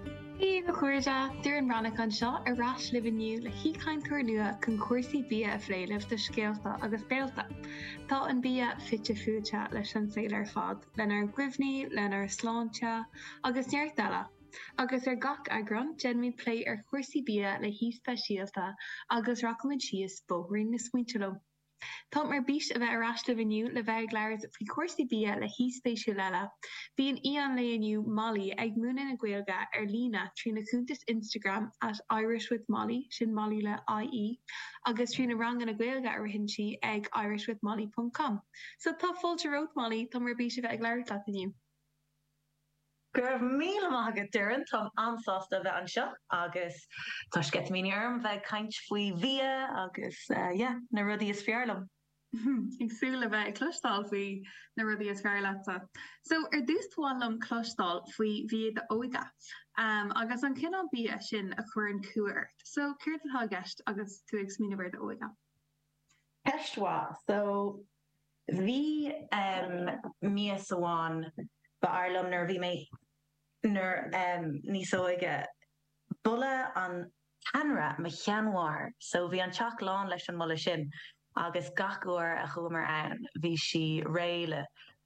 Dia daoibh a chairde, Doireann Ní Ghlacáin anseo, ar ais libh inniu le haoichainteoir nua chun cúrsaí bia a phlé libh do scéalta agus béalta. Tá an bia fite fuaite leis an saol ar fad, lenár gcuimhní, lenár sláinte, agus neart eile, agus ar gach eagrán déanfaimid plé ar chúrsaí bia le haoi speisialta agus rachaimid síos bóithrín na smaointe leo. Táim ar bís a bheith ar ais libh inniu le bheith ag labhairt faoi chúrsaí bia le haoi spéisiúil eile. Bíonn aoi an lae inniu, Mollie, ag múineadh na Gaeilge ar líne trína cuntas Instagram at irishwithmollie, sin Mollie le IE, agus trí na ranganna Gaeilge a ritheann sí ag irishwithmollie ponc com. So tá fáilte romhat, Mollie! Táim ar bís a bheith ag labhairt leat inniu. Go raibh míle maith agat Doireann, táim an-sásta a bheith anseo agus tá sceitimíní orm a bheith ag caint faoi bhia agus yeah, na rudaí is fearr liom. Ag súil le bheith ag cloisteáil faoi na rudaí is fearr leatsa. So, ar dtús ba mhaith liom cloisteáil faoi bhia d'óige, ahm agus an cineál bia sin a chuireann cumha ort. So, céard atá i gceist agus tú ag smaoineamh ar d'óige? Ceist mhaith. So. Bhí mias amháin, ab fhearr liom nuair a bhí mé níos óige, boladh an t-anraith mo sheanmháthar, so bhí an teach lán leis an mboladh sin agus gach uair a chuamar ann bhí sí réidh le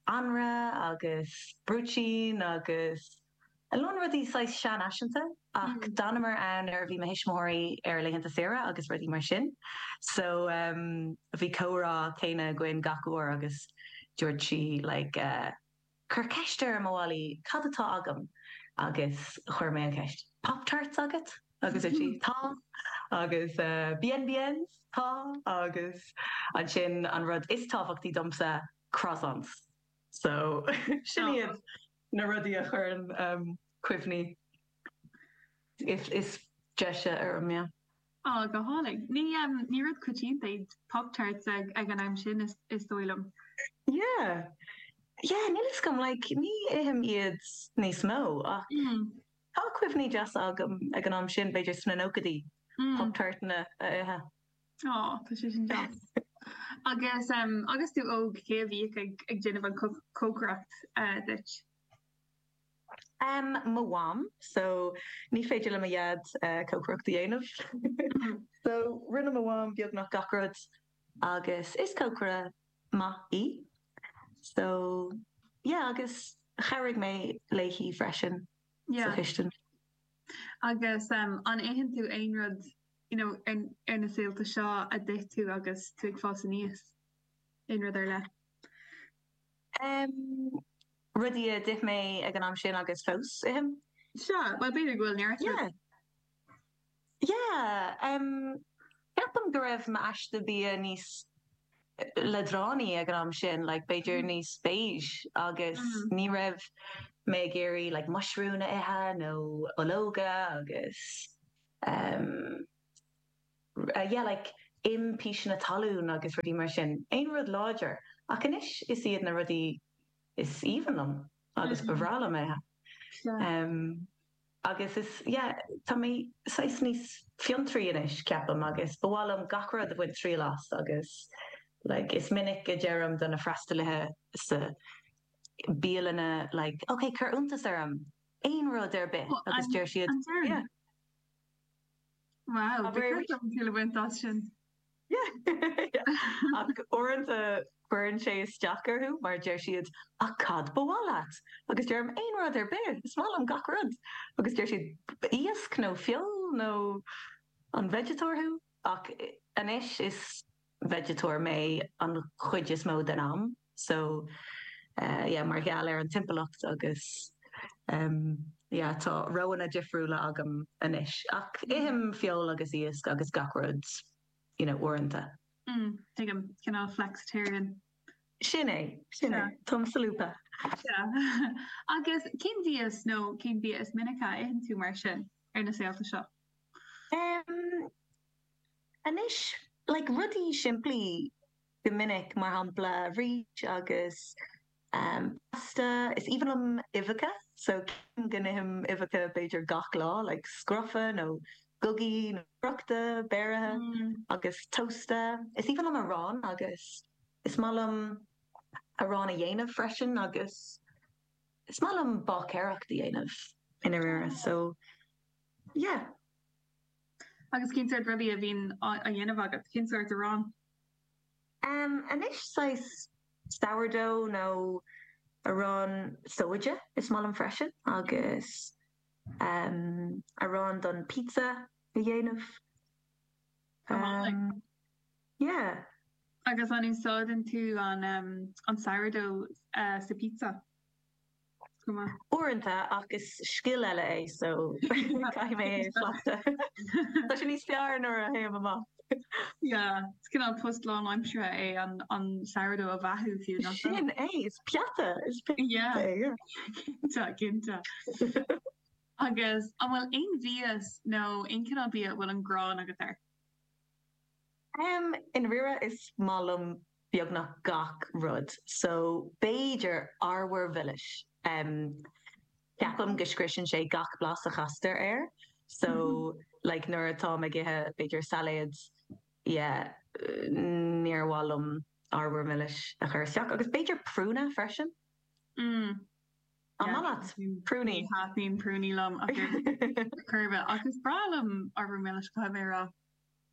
anraith agus brúitín agus. a lán rudaí saghas seanfhaiseanta ach d'fhanamar ann nuair a bhí mo thuismitheoirí ar a laethanta saoire agus rudaí mar sin so ehm bhí comhrá céanna againn gach uair agus dúirt sí like eh cuir ceist orm a Mollie cad atá agam agus chuir mé an cheist Pop Tarts agat? agus dúirt sí tá agus eh Bien Biens tá agus ansin an rud is tábhachtaí domsa Croissants so sin iad. na rudaí a chuireann cuimhní is deise orm. Á, go hálainn. Ní rud coitianta iad Pop-Tarts ag an am sin, is dóigh liom. Yeah, yeah, níl 'fhios agam, like, ní ithim iad níos mó ach tá cuimhní deasa agam ag an am sin, b'fhéidir sna nóchaidí, Pop-Tartanna a ithe. Oh, tá sé sin deas. agus um, agus tú óg cé a bhíodh ag, ag déanamh an co- cócaireacht uh, duit? Um, mo mham, so ní féidir le mo dhaid uh, cócaireacht a dhéanamh. so rinne mo mham beagnach gach rud agus is cócaire maith í. So, yeah, agus chabhraigh mé léi freisin sa Yeah. chistin. Agus um, an itheann tú aon rud you know, ar na saolta seo a d'ith tú agus tú ag fás aníos? Aon rud ar leith? Um, rudaí a d'ith mé ag an am sin agus fós ithim. So b'fhéidir go bhfuil neart rud. Yeah. Yeah, um, ceapaim go raibh m'aiste bia níos leadránaí ag an am sin, like b'fhéidir níos beige agus ní raibh mé ag iarraidh like muisriúin a ithe nó ológa agus. yeah like im píseanna talún agus rudaí mar sin, aon rud láidir, ach anois is iad na rudaí is aoibhinn liom agus ba bhreá liom a ithe. Agus is, yeah, tá mé saghas níos fiontraí anois, ceapaim, agus ba mhaith liom gach rud a bhaint triail as agus like is minic a deirim do na freastalaithe sa bialanna like, okay, cuir iontas orm, aon rud ar bith agus deir siad, An deireann? Yeah. Wow, Abair. ba bhreá liom triail a bhaint as sin. Yeah. Ach uaireanta cuireann sé isteach orthu mar deir siad, Ach cad ba mhaith leat? Agus deirim, Aon rud ar bith, is maith liom gach rud. Agus deir siad, Iasc nó feoil nó an veigeatóir thú? Ach anois is veigeatóir mé an chuid is mó den am so yeah mar gheall ar an timpeallacht agus em yeah tá roghanna difriúla agam anois ach ithim feoil agus iasc agus gach rud you know uaireanta. mm tuigim cineál flexitarian. sin é sin é táim solúbtha. sea agus cén bhia is nó cén bhia is minice a itheann tú mar sin ar na saolta seo? em Anois, like, rudaí simplí go minic, mar shampla, rís agus, em, pasta, is aoibhinn liom uibheacha, so sílim go n-ithim uibheacha b'fhéidir gach lá, like, scrofa nó gogaí nó friochta, beirithe, agus tósta. Is aoibhinn liom arán agus is maith liom arán a dhéanamh freisin agus is maith liom báicéireacht a dhéanamh i ndáiríre, so, yeah. Agus cén sórt rudaí a bhíonn á ndéanamh agat? Cén sórt aráin? Anois, saghas sourdough nó arán sóide is maith liom freisin, agus arán don pizza a dhéanamh. Go hálainn. Yeah. Agus an úsáideann tú an an sourdough sa pizza? Uaireanta, ach is scil eile é so caithfidh mé é a chleachtadh. Tá sé níos fearr nuair a théim amach. Yeah, is cineál post lánaimseartha é an sourdough a bheathú fiú, nach bhfuil? Sin é, is peata, is peata é. Cinnte, cinnte. Agus an bhfuil aon mhias nó aon chineál bia a bhfuil an ghráin agat air? I ndáiríre is maith liom beagnach gach rud, so b'fhéidir arbhar mhilis. Ceapaim go scriosann sé gach blas a chastar air, so like nuair atáim ag ithe b'fhéidir sailéad, yeah, níor mhaith liom arbhar milis a chur isteach. Agus b'fhéidir prúna freisin. Mm. An maith leat prúnaí? Ní thaitníonn prúnaí liom ar chor ar bith. Ach is breá liom arbhar milis, caithfidh mé a rá.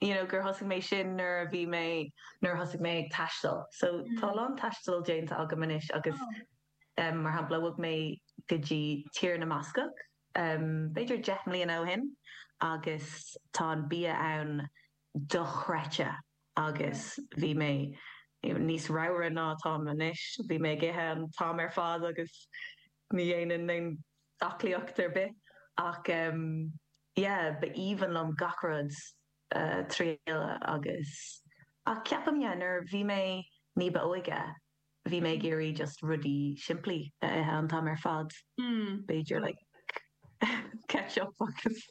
you know, gur thosaigh mé sin nuair a bhí mé, nuair a thosaigh mé ag taisteal. So tá a lán taistil déanta agam anois agus em, mar shampla bhog mé go dtí Tír na mBascach em, b'fhéidir deich mbliana ó shin agus tá an bia ann dochreidte agus bhí mé níos ramhra ná atáim anois, bhí mé ag ithe an t-am ar fad agus, ní dhéanainn aon aclaíocht ar bith ach yeah ba aoibhinn liom gach rud a thriail agus ach ceapaim yeah nuair a bhí mé ní ba óige bhí mé ag iarraidh just rudaí simplí a ithe an t-am ar fad b'fhéidir like ketchup agus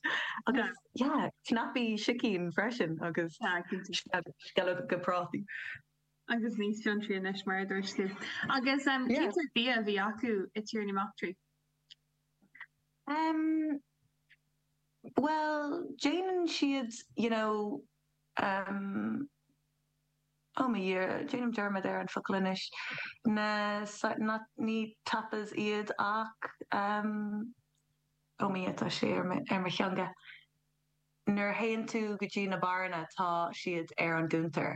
agus yeah cnaipí sicín freisin agus yeah sceallóga prátaí. Agus níos fiontraí anois, mar a dúirt tú. Agus cén sórt bia a bhí acu i dTír na mBascach? Em, bhuel, déanann siad, you know, em, oh my year, déanaim dearmad ar an focal anois, na soi-, not, ní tapas iad ach, em, oh my, tá sé ar m', ar mo theanga, nuair a théann tú go dtí na barranna tá siad ar an gcuntar.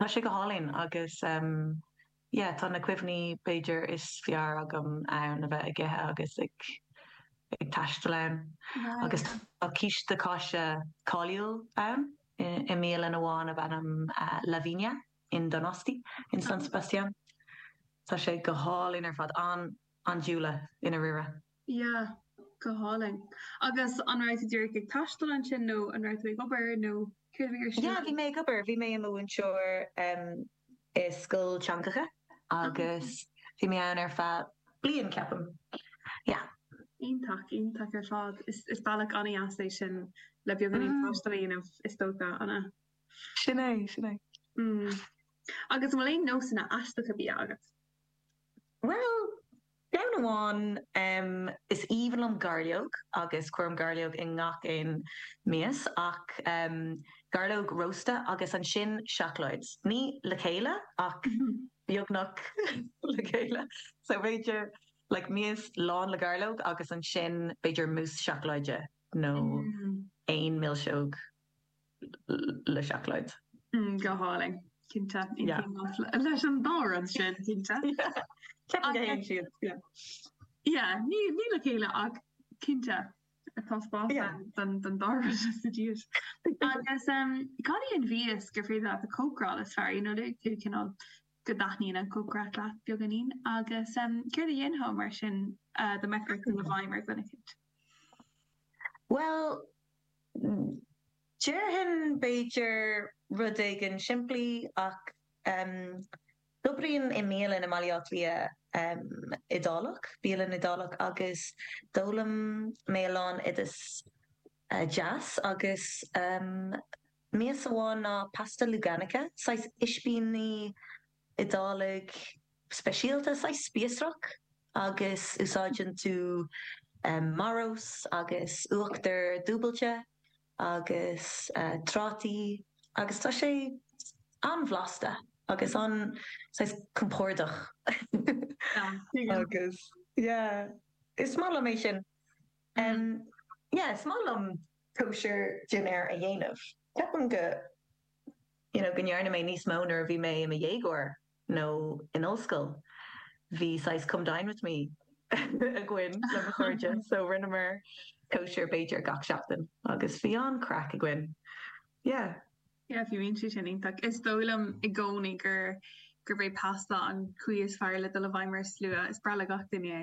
Tá sé go hálainn agus yeah tá na cuimhní b'fhéidir is fearr agam ann a bheith ag ithe agus ag ag taisteal ann agus tá císte cáise cáiliúil ann i mbialann amháin ab ainm La Viña in Donosti in San Sebastián. Tá sé go hálainn ar fad an-andúileach i ndáiríre. Sea. Go hálainn. Agus an raibh tú díreach ag taisteal ansin nó an raibh tú ag obair nó céard a bhí ar siúl agat? Sea, bhí mé ag obair. Bhí mé i mo mhúinteoir i scoil teangacha agus bhí mé ann ar feadh bliain, ceapaim. Yeah. Iontach, iontach ar fad. Is bealach an-deas é sin le beagáinín taistil a dhéanamh, is dócha, an ea? Sin é, sin é. Agus an bhfuil aon nósanna aisteacha bia agat? Bhuel! Ceann amháin, Is aoibhinn liom gairleog agus cuirim gairleog i ngach aon mias ach gairleog rósta agus ansin seacláid. Ní le chéile ach beagnach le chéile. So b'fhéidir like mias lán le gairleog agus ansin b'fhéidir mousse seacláide nó aon mhilseog. le seacláid. Go hálainn, cinnte. Yeah. Leis an dá rud sin, cinnte. Ceapaim go dtéann siad, yeah. Yeah, ní le chéile ach cinnte tá spás Yeah. ann don dá rud sa dias. Agus um, cad é an mhias gur féidir leat a chócaráil is fearr, you know, ar chineál go dtaitníonn an chócaireacht leat beagáinín agus um, céard a dhéanfá mar sin uh, dá mbeifeá ag dul i bhfeidhm ar dhuine eicínt? Bhuel, Déarfainn, b'fhéidir, rud éigin simplí, ach d'oibrínn i mbialann i mBaile Átha Cliath, Iodálach, bialann Iodálach, agus d'fhoghlaim mé a lán oideas deas agus mias amháin ná pasta Luganica, saghas ispíní. Iodálach speisialta, saghas spíosrach, agus úsáideann tú marós agus uachtar dúbailte agus trátaí agus tá sé an-bhlasta agus an, saghas, compordach. Agus, yeah, is maith liom é sin. Yeah, is maith liom cóisir dinnéir a dhéanamh. Ceapaim go. you know, go ndearna mé níos mó nuair a bhí mé i mo dhéagóir nó in ollscoil. Bhí saghas come dine with me againn le mo chairde so rinneamar cóisir b'fhéidir gach seachtain agus bhí an-chraic againn. Yeah. Yeah, bheadh sé sin iontach. Is dóigh liom i gcónaí gur gurb é pasta an chaoi is fearr le dul i bhfeidhm ar slua. Is breá le gach duine é.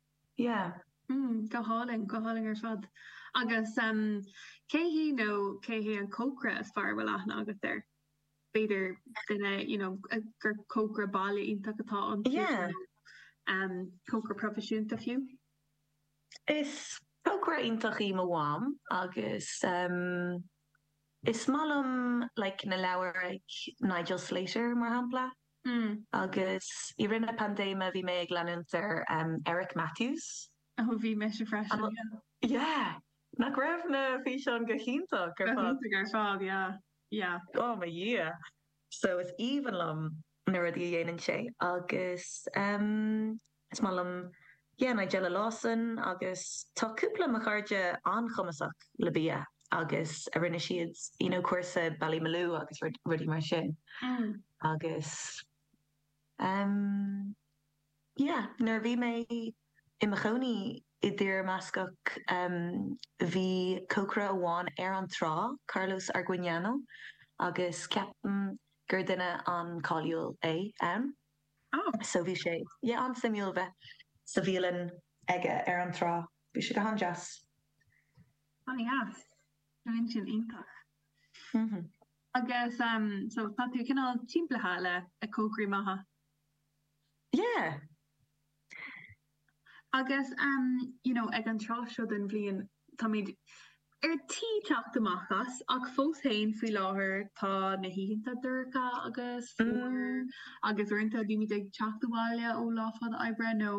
Yeah. Mm, go hálainn, go hálainn ar fad. Agus em cé hí nó cé hé an cócaire is fearr a bhfuil aithne agat air? B'fhéidir duine, you know, gur cócaire baile iontach atá iontu Yeah. nó em cócaire proifisiúnta fiú? Is cócaire iontach í mo mham agus em is maith liom like na leabhair ag Nigel Slater mar shampla. Hm. Agus i rith na paindéime bhí mé ag leanúint ar Eric Matthews. Ó, bhí mise freisin, yeah. Yeah! Nach raibh na físeáin go hiontach ar fad? Go hiontach ar fad, yeah, yeah. Oh mo Dhia! So is aoibhinn liom na rudaí a dhéanann sé agus umm. Is maith liom yeah Nigella Lawson agus tá cúpla mo chairde an-chumasach le bia agus a rinne siad you know cúrsa Ballymaloe agus rudaí mar sin agus ehm yeah nuair a bhí mé i mo chónaí i dTír na mBascach ehm bhí cócaire amháin ar an trá, Carlos Arguiñano, agus ceapaim gur duine an-cáiliúil é ann. So bhí sé, yeah, an-suimiúil bheith sa bhialann aige ar an trá. Bhí sé go han-deas. Ó an-deas. Bhí sin iontach. Agus so tá tú cineál timpeallaithe le cócairí maithe. Yeah. Agus, you know, ag an tráth seo den bhliain, táimid ar tí teacht amach as, ach fós ann faoi láthair tá na hoícheanta dorcha agus fuar agus uaireanta bímid ag teacht abhaile ó lá fada oibre nó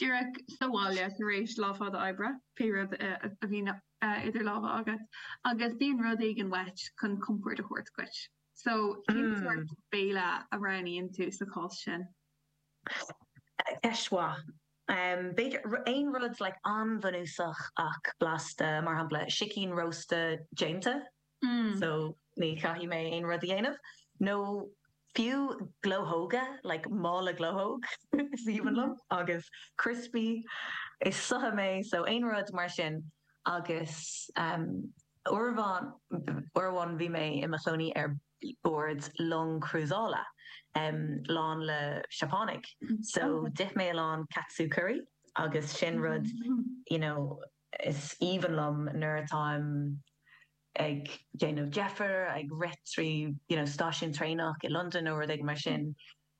díreach sa bhaile tar éis lá fada oibre, pé rud a bhíonn idir lámha agat, agus bíonn rud éigin uait chun compord a thabhairt duit. So cén sórt béile a roghnaíonn tú sa chás sin? Ceist mhaith. B'fhéidir. Aon rud like an-bhunúsach ach blasta, mar shampla, sicín rósta déanta, so ní chaithfidh mé aon rud a dhéanamh. Nó fiú glóthóga, like mála glóthóg is aoibhinn liom, agus criospaí. Is sutha mé, so aon rud mar sin. Agus uair amháin bhí mé i mo chónaí ar. bord long crúsála lán le Seapánaigh so d'ith mé a lán katsu curry agus sin rud you know is aoibhinn liom nuair atáim ag déanamh deifir ag rith trí you know stáisiún traenach i Londain nó rud éigin mar sin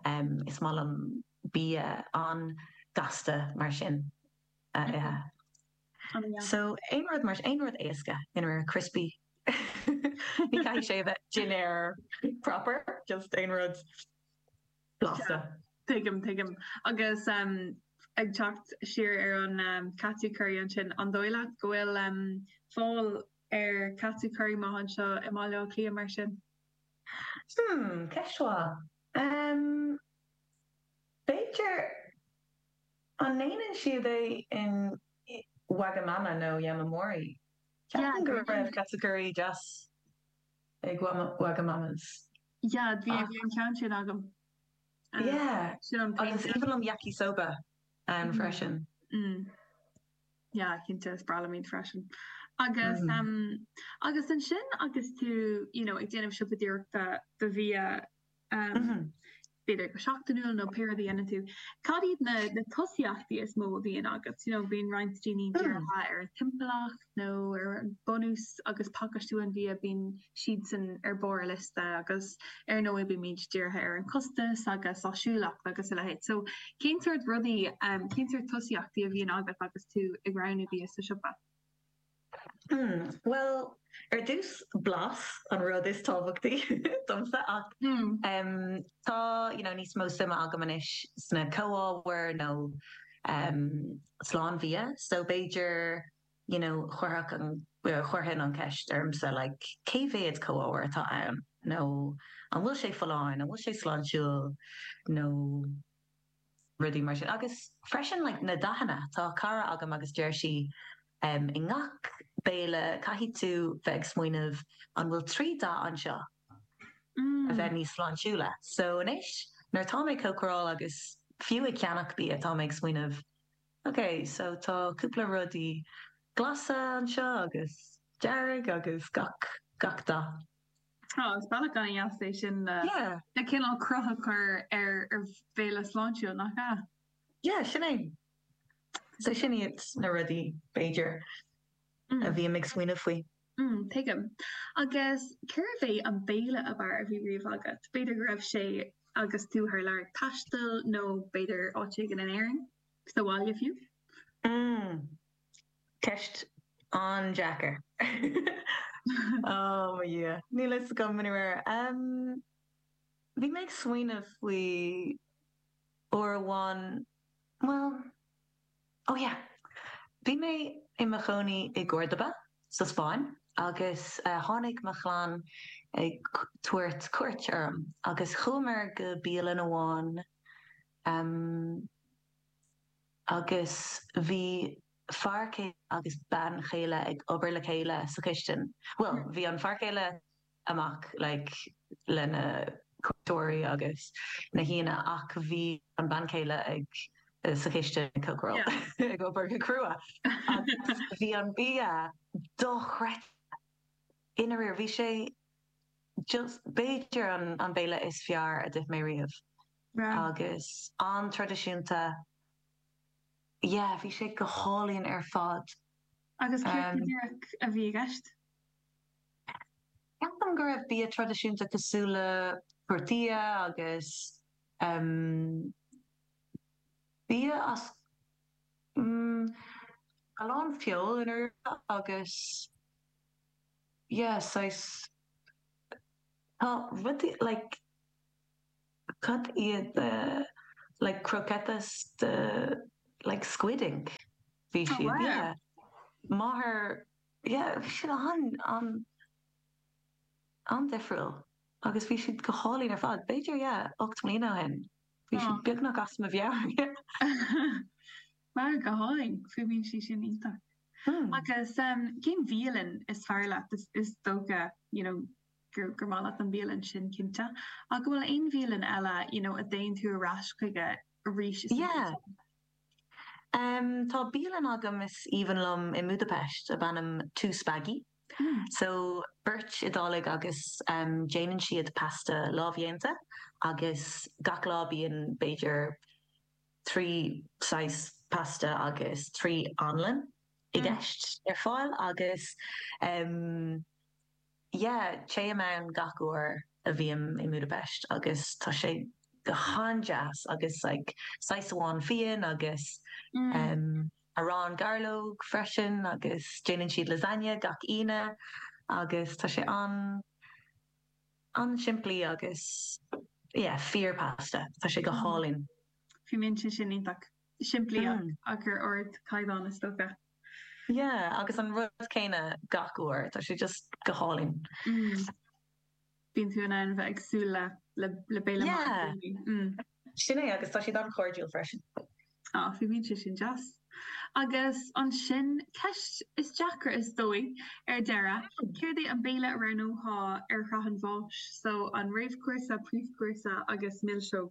is maith liom bia an-gasta mar sin a ithe. So, aon rud mar sin, aon rud éasca in réir criospaí, ní chaithfidh sé a bheith dinnéar proper, just aon rud blasta. Tuigim, tuigim. Agus ag teacht siar ar an Katsu curry ansin, an dóigh leat go bhfuil fáil ar Katsu curry maith anseo i mBaile Átha Cliath mar sin? Hmm, ceist mhaith. B'fhéidir, An ndéanann siad é in Wagamama nó Yamamori? Ceapaim go raibh katsu curry deas ag Wagamamas. Yeah, bhí an ceann sin agam. Yeah, is aoibhinn liom Yakisoba ann freisin. Mm, yeah, cinnte, is breá liom iad freisin. Agus, em, agus ansin agus tú, you know, ag déanamh siopadóireachta do bhia, em, b'fhéidir go seachtainiúil nó pé rud a dhéanann tú, cad iad na tosaíochtaí is mó a bhíonn agat? You know, bíonn roinnt daoine dírithe ar an timpeallacht nó ar bunús agus pacáistiú an bhia, bíonn siadsan ar barr a liosta agus ar ndóigh bímid dírithe ar an costas agus áisiúlacht agus a leithéid. So cén sórt rudaí, cén sórt tosaíochtaí a bhíonn agat agus tú ag roghnú bia sa siopa? Bhuel, ar dtús, blas an rud is tábhachtaí domsa ach tá you know níos mó suime agam anois sna comhábhair nó slán bhia so b'fhéidir you know chuirfeadh an, chuirfinn an cheist orm féin like cé mhéad comhábhair atá ann nó an bhfuil sé folláin, an bhfuil sé sláintiúil nó. rudaí mar sin. Agus freisin like na dathanna, tá cara agam agus deir sí em i ngach béile caithfidh tú bheith ag smaoineamh an bhfuil trí dath anseo a bheith níos sláintiúla. So anois nuair atá mé ag cócaráil agus fiú ag ceannach bia tá mé ag smaoineamh ok so tá cúpla rudaí glasa anseo agus dearg agus gach gach dath. Tá, is bealach ana dheas é sin le le cineál cruth a chur ar ar bhéile sláintiúil nach ea? Yeah, sin é. So sin iad na rudaí b'fhéidir a bhím ag smaoineamh faoi. Mm, tuigim. Agus cérbh é an béile ab fhearr a bhí riamh agat? B'fhéidir go raibh sé agus tú thar lear ag taisteal nó b'fhéidir áit éigin in Éirinn, sa bhaile fiú? Mm. Ceist an-deacair. Ó mo Dhia, níl a fhios agam ar chor ar bith. Bhí mé ag smaoineamh faoi uair amháin, bhuel, ó yeah, bhí mé i mo chónaí i gCórdoba sa Spáinn agus tháinig mo chlann ag tabhairt cuairt orm agus chuamar go bialann amháin, agus bhí fear céile agus bean chéile ag obair le chéile sa chistin, bhuel, bhí an fear céile amach like le na cuairteoirí agus na haíonna ach bhí an bean chéile ag sa chistin ag cócaireacht yeah ag obair go crua agus bhí an bia dochreidte i ndáiríre bhí sé just b'fhéidir an an béile is fearr a d'ith mé riamh. Bhreá. Agus an-traidisiúnta. Yeah, bhí sé go hálainn ar fad. Agus céard go díreach a bhí i gceist? Ceapaim go raibh bia traidisiúnta cosúil le tortilla agus ehm bia as mm a lán feoil in uaireanta agus yeah saghas tá rudaí like, Cad iad, like, croquetas de like squid ink bhí siad yeah máthair yeah bhí siad an an an-difriúil agus bhí siad go hálainn ar fad b'fhéidir yeah ocht mbliana ó shin bhí siad beagnach as mo mheabhair yeah. Ó go hálainn, fuaimníonn sé sin iontach. Agus cén bhialann is fearr leat is is dócha you know gur gur maith leat an bhialann sin cinnte. Ach an bhfuil aon bhialann eile you know a dtéann tú ar ais chuige arís is Yeah umm tá bialann agam is aoibhinn liom i mBúdapest ab ainm Two Spaghi. Mm. So beirt Iodálaigh agus umm déanann siad pasta lámhdhéanta agus gach lá bíonn b'fhéidir trí saghas pasta agus trí anlann i gceist ar fáil agus umm yeah téim ann gach uair a bhím i mBudapest agus tá sé go han-deas agus like saghas amháin fíon agus em arán gairleoige freisin agus déanann siad lasagne gach Aoine agus tá sé an an-simplí agus yeah fíorphasta tá sé go hálainn. Fuaimníonn sé sin iontach. simplí ach ar ardchaighdeán is dócha. Yeah agus an rud céanna gach uair, tá sé just go hálainn. Mm bíonn tú in ann bheith ag súil le le béile maith i gcónaí. Mm. Sin é agus tá siad an-chairdiúil freisin. Á, fuaimníonn sé sin deas. Agus ansin ceist is deacra is dóigh ar deireadh, céard é an béile a roghnófá ar shraith an bháis, so an réamhchúrsa, príomhchúrsa agus milseog?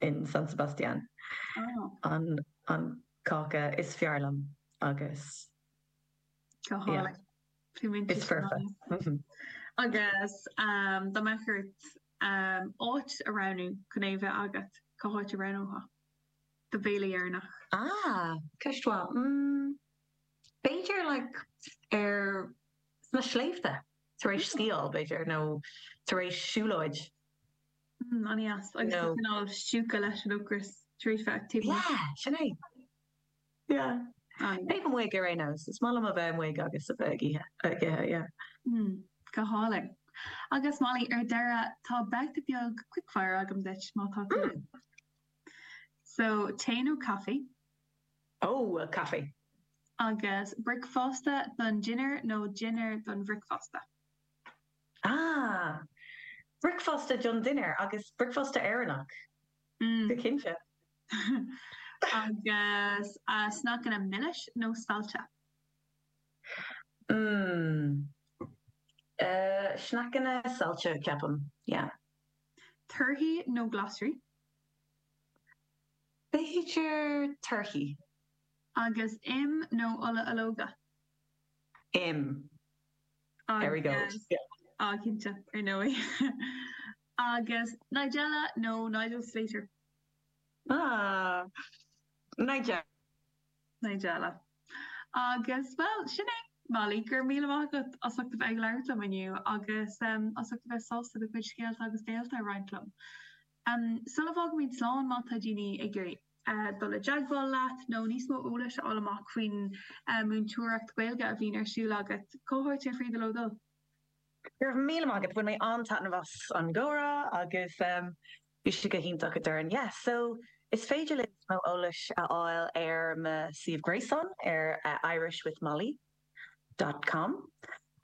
in San Sebastián an cáca is fearr liom agus is foirfe. Agus dá mbeadh ort áit a roghnú chun é a bheith agat, cá háit a roghnófá do bhéile deireanach? Ah, ceist mhaith. B'fhéidir sna sléibhte tar éis sciáil, b'fhéidir, nó tar éis siúlóid. Mm, an-deas, agus No. cineál stiúgtha leis an ocras tar éis an activity. Yeah, sin é. Yeah. Ah, yeah. Taobh amuigh ar aon nós, is maith liom a bheith amuigh agus a bheith ag ithe, ag ithe, yeah. Mm, go hálainn. Agus Mollie, ar deireadh, tá babhta beag quickfire agam duit, má tá tú linn. So, tae nó caife, Oh, well, caife. agus bricfeasta don dinnéar nó dinnéar don bhricfeasta. Ah! Bricfeasta don dinnéar agus bricfeasta Éireannach, go cinnte. Agus sneaiceanna milis nó saillte? Mmm. Sneaiceanna saillte, ceapaim, yeah. Torthaí nó glasraí? B'fhéidir torthaí. Agus im nó ola ológa? Im. There we go. Á, cinnte, ar ndóigh. Agus Nigella nó Nigel Slater? Ah, Nigella. Nigella. Agus, bhuel, sin é, Mollie, go raibh míle maith agat as ucht a bheith ag labhairt liom inniu agus as ucht a bheith sásta do chuid scéalta agus scéalta a roinnt liom. Ach sula bhfágfaimid slán má tá daoine ag iarraidh dul i dteagmháil leat nó níos mó eolais a fháil amach faoin múinteoireacht Gaeilge a bhíonn ar siúl agat, cá háit ar féidir leo dul? Go raibh míle maith agat, bhain mé an-taitneamh as an gcomhrá agus bhí sé go hiontach, a Doireann. Yeah, so is féidir libh níos mó eolais a fháil ar mo suíomh gréasáin ar Irish with Mollie. dot com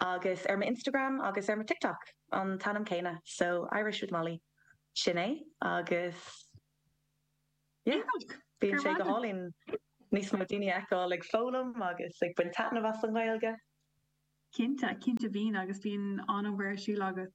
agus ar m'Instagram agus ar mo TikTok an t-ainm céanna, so Irish with Mollie, sin é agus yeah, Iontach! bíonn sé go hálainn níos mó daoine a fheiceáil ag foghlaim agus ag baint taitneamh as an nGaeilge. Cinnte, cinnte bíonn agus bíonn an-obair ar siúl agat.